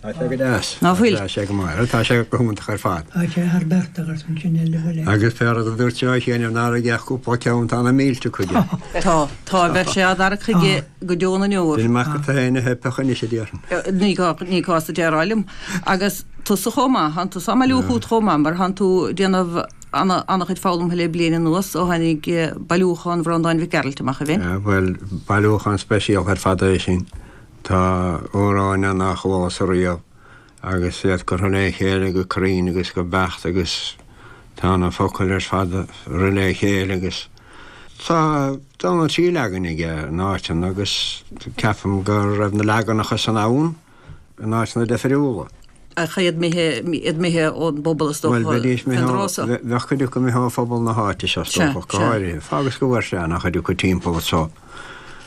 Tá sé go deas. Ná fuil. Tá sé go maith. Tá sé go hiontach ar fad. Tá sé thar barr agat an cinneadh le bhfuil ag. Agus fear agus a dúirt seo chéanna an fear a gheobhadh cúpla ceann tá na mílte aige. Tá, tá, bheadh sé á dtarrac chuige go deo na ndeor. Bhí Mac Mhatha ina theipthe anois a déarfainn. Ní gá, ní gá duit a rá liom. Agus tusa chomh maith, tánn tusa á mbailiú chugat chomh maith, mar tánn tú ag déanamh ana, ana-chuid foghlamtha le bliain anuas ó tháinig bailiúchán Bhreandáin Mhic Gearailt amach, a Bhinn. Bhuel, bailiúchán speisialta ar fad é sin. Tá amhráin ann nár chualas riamh agus iad curtha le chéile go cruinn agus go beacht agus tá na focail ar fad curtha le chéile agus tá dhá nó trí leagan aige in áiteanna agus ceapaim go raibh na leaganacha san ann in áiteanna difriúla. Ach iad imithe ón bpobal is dócha. Bhuel bheidís imithe ón rosa. Bheadh cuid acu imithe ó phobal na háite seo is dócha go háirithe. Agus go bhfuair sé ana-chuid acu timpeall anso.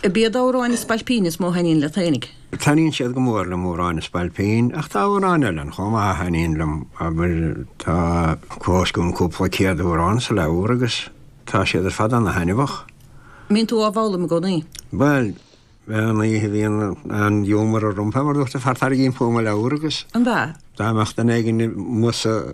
B'iad amhráin na spailpíní is mó a thaitníonn leatsa. Taitníonn siad go mór liom, amhráin na spailpín, ach tá amhráin eile ann chomh maith a thaitníonn liom, abair, tá clós agam cúpla céad amhrán sa leabhar agus tá siad ar fad ana-thaitneamhach. An mbíonn tú á bhfoghlaim i gcónaí? Bhuel, an oíche a bhíonn an giúmar orm, mar a dúirt an fear, tarraingím chugam an leabhar agus. An bhfear? Dá mbeadh duine éigin amuigh sa.